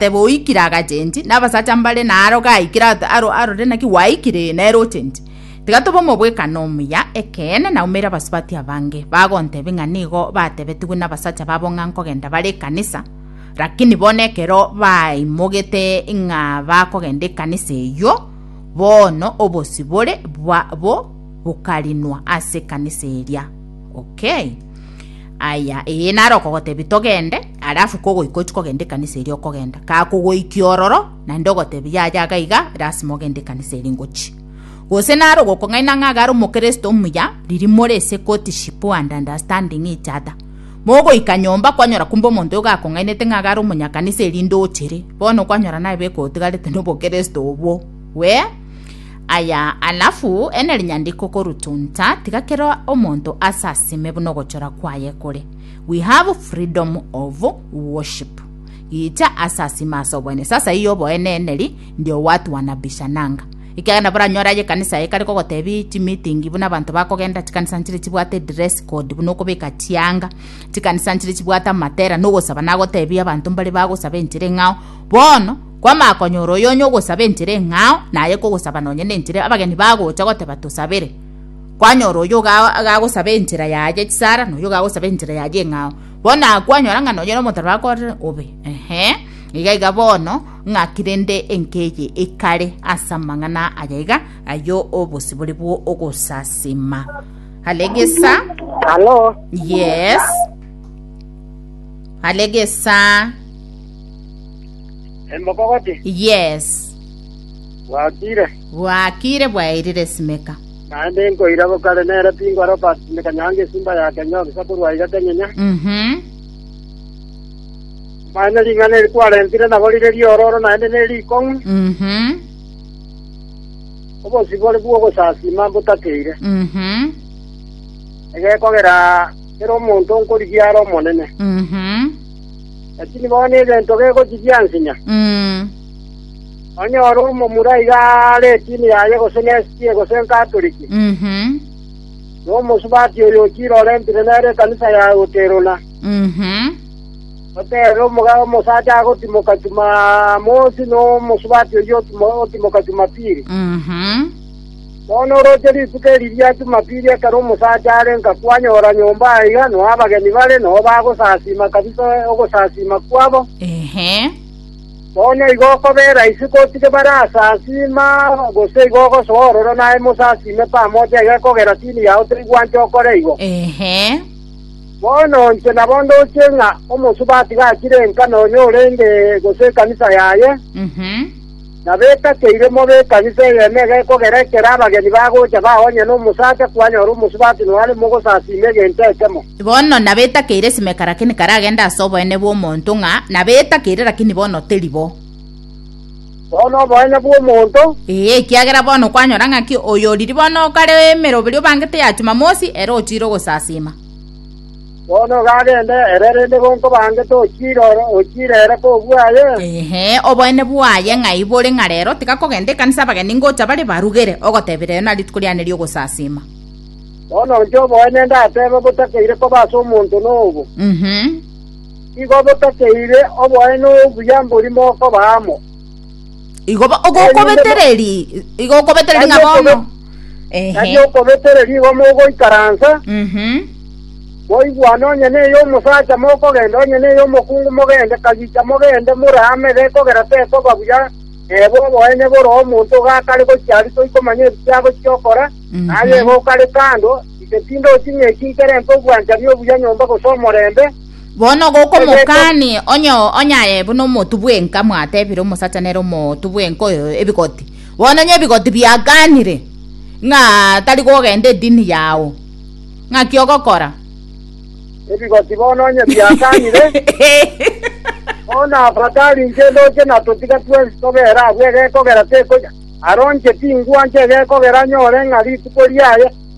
Tebe oikire agachenji, na abasacha mbare na aro gaikire at- aro arore naki gwaikire, ee, nere ochenji. Tiga tobe omobwekano omuya, ekeene, na umeire abasubati abange, bagontebie ng'a nigo batebetigwe nabasacha babo ng'a nkogenda bare ekanisa, rakini bono ekero baimogete ng'a bakogenda ekanisa eyio, bono obosibore bwabo bokarinwa ase ekanisa eria. Okay. Aya, ee naro okogotebia togende, alafu kogoika ochi kogenda ekanisa eri okogenda. Kakogoikia ororo, naende ogotebia yaya iga iga, lasima ogende ekanisa eri ngochi. Gose naro gokong'aina ng'a gare omokristo omuya, riri more ase courtship and understanding each other. Mogoika nyomba kwanyora kumbe omonto oyo gakong'ainete ng'a gare omonyakanisa erinde ochere. Bono kwanyora naye bekogotigarete nobokristo obwo. Wee? Aya alafu enerinyandiko korutunta tiga kero omonto ase asime buna ogochora kwaye kore we have freedom of worship gicha ase asime ase oboene sasa iyo oboene eneri ndio watu wanabishananga ekiagera nabo oranyore aye ekanisa ekare kogotebi chimitingi buna abanto bakogenda chikanisa nchire chibwate dress code buna okobeka chianga chikanisa nchire chibwate amatera nogosaba nagotebia abanto mbare bagosaba enchire ng'ao bono Kwamanya konyora oyo onye ogosaba enchera eng'ao, naye kogosaba nonye nenchera abageni bagocha goteba tosabere. Kwanyora oyo agagosaba enchera yaye chisara, na oyo agagosaba enchera yaye eng'ao. Bono aa kwanyora ng'a nonye nomotarwa akorire obe. Ehe, iga iga bono ng'aki rende enka eye ekare ase amang'ana aya iga ayio obosibore bwo ogosasima. Alegesa. Halo. Yes. Alegesa. Emokogoti. Yes. Gwakire. Gwakire bwairire esimeka. Naende nkoira bokare nere pingwa Robert simeka nyange esimba ya Kenya ogisa korwa iga kenyenya. Mhm. Mane ring'ana eri kwarentire nabo rire riororo naende ne rikong'u. Mhm. Obosibore bw'ogosasima mbotakeire. Mhm. Egekogera kera omonto nkorigia are omonene. Mhm. Lakini bono ebento begochia biansinya. Mm. Onye ore omomura iga aare etini yaye gose n'SG gose Nkatoliki, Mhm. na omosubati oyo ochire orentire nere ekanisa yaye goteruna, Mhm. oteerere omogabe omosacha agotimoka Chumamosi na omosubati oyio otimo- otimoka Chumapili. Mhm. Bono oroche rituko eri ria Jumapili ekero omosacha are nkakwanyora nyomba aiga, noa abageni bare, nao bagosasiima kabisa ogosasiima kwabo. Bono igo okobera ise gotige barasasiima, gose igo ogosoa ororo naye mosasiime pamoja iga ekogera tini yao toigwanche okore igo. Bono inche nabo ndoche ng'a omosubati gachire enka nonya orenge, gose ekanisa yaye. Na betakeire mobe ekanisa eyemo iga ekogera ekero abageni bagocha baonye nomosacha kwanyora omosubati noare mogosasiima egento ekemo. Bono nabetakeire Simeka lakini karagende ase oboene bw'omonto ng'a nabetakeire lakini bono teri bo. Bono oboene bw'omonto. Ee, ekiagera bono kwanyora ng'aki oyoriri bono okare emeroberio bangete ya Chumamosi ere ochiire ogosasiima. Bono ogagenda ere, erende gonkobange tochiire ore, ochiire ere kobua aye? Inee! Oboene bwaye ng'ai bore ng'a rero tiga kogenda ekanisa abageni ngocha bare barugere, ogotebia rero na rituko riane ri'ogosasiima? Bono inche oboene ndatebe botakeire koba ase omonto nobo. Igo botakeire oboene obuya mbori mokoba amo. Igo bo- Erinde mo- ogokobetereri, igo okobetereri ng'a Nari bono. okobe- Nari okobetereri igo mogoikaransa, Mhm. moigwane onye neye omosacha mokogenda, onye neye omokungu mogende, kagicha mogende more amebe, ekogera tekoba buya neba oboenye bore omonto iga akare gochia aria toikomanya ebikia agochia okora, Mhm. naye igo okare kando, ise tindochi ng'a eki nkere nte obwanchani obuya nyomba gose omorembe, Bono gokomokaania onye onyaye buna omotu bw'enka mwatebire omosacha nere omotu bw'enka oyo ebigoti. Bono onye ebigoti biakanire ng'a tari gogenda edini yao, ng'aki ogokora? Ebigoti bono onye biakanire, oo nafakari inche ndoche na totiga twensi tobere agwo egekogera tekonya, aronche tingwancha egekogera anyore ng'a rituko riaye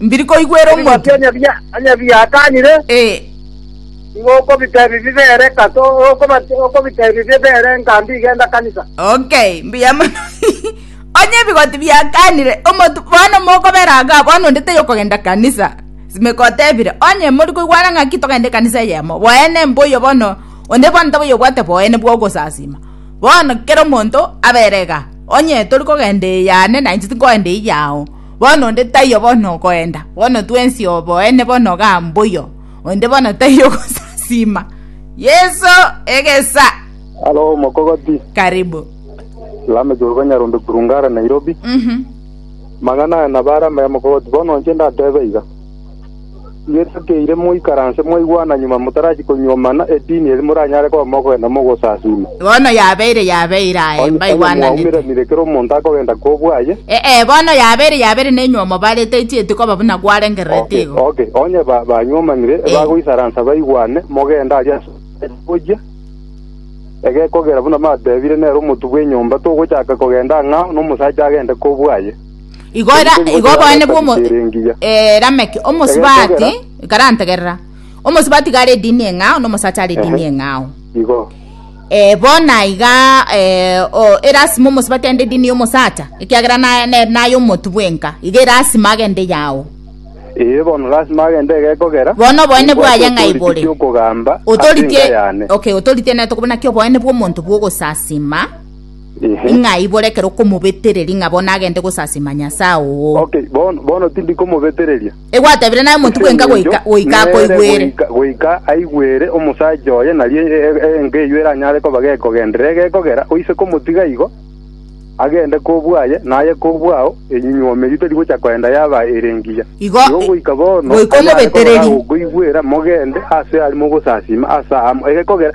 Mbiri koigwera Ebi omonto. gocha onye biatanire, nigo okobiteebia bibere kato, okobiteebia bibere nka mbi genda kanisa. Okay, mbuya mono. Onye ebigoti biakanire, omonto bono mokobera iga, bono onde taiyo kogenda kanisa. Simeka otebire, onye mori koigwana ng'aki togende kanisa eyemo, boene mboyo bono, onde bono taboyo obwate boene bwa ogosasima. Bono kera omonto abere iga, onye tori kogenda eyane, nainche tinkoenda eyao. Bono onde taiyo bono ogoenda, bono twensi oboene bono igaa mbuya, onde bono taiyo ogosasiima. Yeso, egesa. Alo omokogoti. Karibu. Lame Joroge Nyarombe Kulungara Nairobi. Mhm. Mang'ana aya nabare amaya mokogoti bono inche ndatebe iga. Ngetokeire moikaranse mwaigwana nyuma motarachia konyuoma mana edini eria moranyare koba mogokenda mogosasiima. Bono yabeire yabeire, aye, Onye mbaigwananete. mwaumeranire ekero omonto akogenda kobwaye. Ee, bono yabeire yabeire nenyuomo barete etieti koba buna kwarengererete igo. Okay, okay. Onye ba, banyuomanire, Ee. bagoisaransa baigwane, mogende aria ase gochia, egekogera buna mbateebire, nere omotu bw'enyomba togochaka kogenda ang'ao nomosacha agende kobwaye. igo era Erinde igo omonto obonene bwa omo yagatabisera engiya. eh, rameki omosibati Egetogera. karantegerera omosibati iga are edini eng'ao na omosacha are edini Ehe. eng'ao igo eh, bona iga eh, o- erasima omosibati ande edini y'omosacha ekiagera na- ne- naye omotu bwenka iga erasima agende yao ee bono lasima agende egekogera Bono oboene Nimbwate bwaye ng'a otoriki igore. ki'okogamba ase enka otorite yane okay otorite nere tokobona ki oboene bwa omonto bwa ogosasima Ing'a aibore ekero okomobetereria ng'a bono agende gosasima Nyasae oo. Okay, bono, bono tindi komobetereria. Egwatebire naye monto bwenka goika, goika Nere akoigwere. goika- Goika aigwere omosacha oye, nario e- e- enka eyio eranyare koba gekogenderera egekogera, oise komotiga igo, agende kobua aye, naye kobua ao, enyunywomo eyio teri gocha koenda yaba ere engiya. Igo, Igo e- goika bono, goika anyare koba omobetereri. gagokoigwera, mogende ase are mogosasima ase amo, egekogera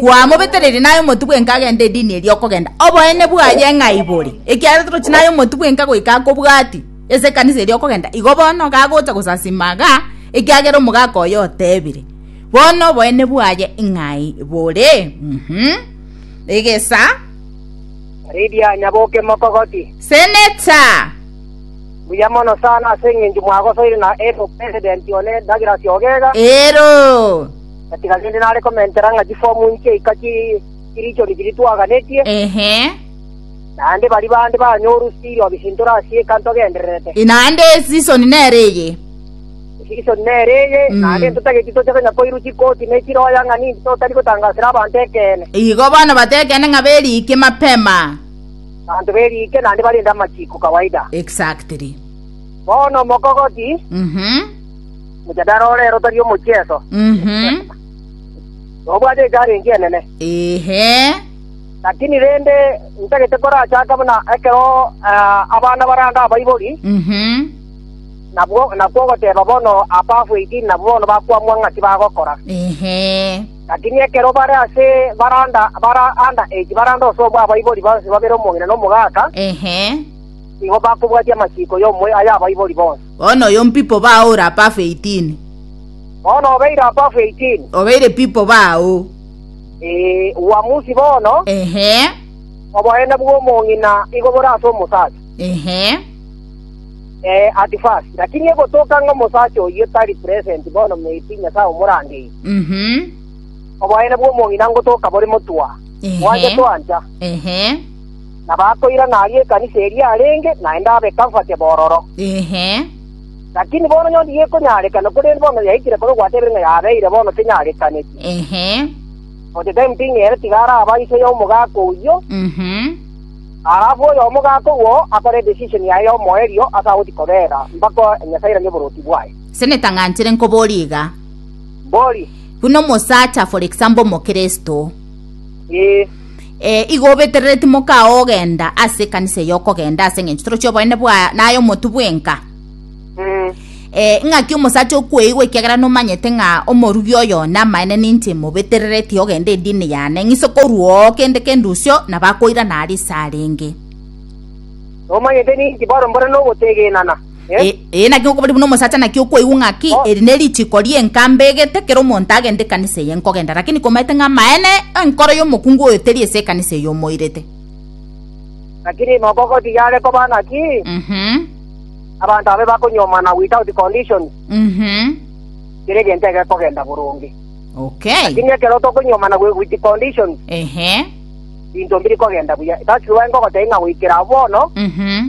Kwamobetereire naye omotu bwenka agende edini eria okogenda. Oboene bwaye ng'ai bore? Ekiagera torochi naye omotu bwenka goika akobwati ase ekanisa eria okogenda. Igo bono gagocha gosasima iga ekiagera omogaka oye otebire. Bono oboene bwaye ng'ai bore? Uhum. Egesa. Lydia, nyaboke mokogoti. Senator. Buya mono sana ase eng'encho mwagosoire na Ero president one Douglas Ogega. Ero. Gatiga rende nare komentera ng'a chifomu inche ika chirichoni chiria twaganetie, naende baria bande banyoru siiro bisintore ase eka ntogendererete. Naende esisoni nere eye. Esisoni nere eye, naende ntotageti toche konya koirwa chikoti ne chiroya ng'a ninki totari gotangasera abanto ekeene. Igo bono bata ekeene ng'a beriike mapema. Abanto beriike naende barende amachiko kawaida. Exactly. Bono mokogoti. Mhm. Omochandara o rero tari omochieso, Mhm. nobwate echallenge enene. Ehe. Lakini rende ntagete korachake buna ekero ah, abana baranga abaibori, Mhm. nabwo nakwo ogoteba bono abafu 18 nabwo bono bakwamwa ng'aki bagokora. Ehe. Lakini ekero bare ase baranda bara under age baranda ose obwa abaibori bonsi babere omong'ina na omogaka, Ehe. igo bakobwatia amachiko y'omoyo ay'abaibori bonsi. Bono oyo mpipo bao ore apafu eitini. Bono obeire apafu eitini. Obeire pipo bao. Ee, uamusi bono. Ehe. Oboene bw'omong'ina igo bore ase omosacha. Ehe. Ee, at first. Lakini egotoka ng'a omosacha oyio tari present bono maybe Nyasae omorangeire. Mhm. Oboene bw'omong'ina ngotoka bore motwa. Ehe. Mwancha twancha. Ehe. na bakoirana aria ekanisa eria yarenge, naende abe Comfortable ororo. Inhe. Lakini bono nyondo yekonyaarekana, korende bono yaikire kobe gwatebirie ng'a yabeire bono tenyarekaneti. Inhe. For the time being ere tiga araba iso ya omogaka oyio, Mhm. alafu oyo omogaka owo akore decision yaye ya omoerio ase agoti kobera mpaka Nyasae airanie oboroti bwaye. Seneta ng'anchire nkoborie iga. Mbori. Buna omosacha for example omokristo, Ee. Eh, igo obeterere timokaa ogenda ase ekanisa eye okogenda ase eng'encho torochi oboene bwa naye omotu bwenka Mm. eh, ng'aki omosacha okweigwa ekiagera nomanyete ng'a omorugi oyo namaene ninche mobeterereti ogenda edini yane ng'ise korwoo kende kendusio nabakoirana aria ase arenge Nomanyete ninki baro mbore nogotegenana. Ee, ee, naki okobori buna omosacha naki okwaigwa ng'a ki eri ne richiko rienka mbegete kero omonto agende ekanisa eye nkogenda lakini komaete ng'a amaene enkoro y'omokungu oyo teri ase ekanisa eye omoirete lakini moko gotiga are koba naki mhm abanto abe bakonyomana without condition mhm kere egento egekogenda boronge okay lakini ekero tokonyomana wi- with condition ehe binto mbiri kogenda buya that's why ngogotebia ng'a goikera bono mhm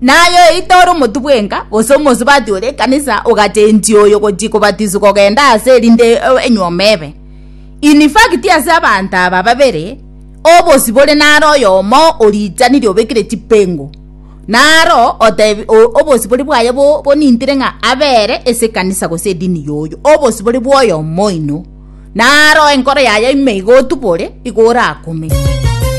Naye oyoeita ore omotwe bwenka, gose omosubati ore ekanisa, ogachenchia oyo gochia kobatiswa kogenda aase erinde enyuoma ebe. In fact, ase abanto aba babere, obosio bore naro oyomo oriichanirie obekire chipengo, naro otebi, o, obosio bore bwaye bo, bonintire ng'a abe ere ase ekanisa gose edini yoyio. Obosio bore bwoyomo oino, naro enkoro yaye ime iga otubore, iga orakume.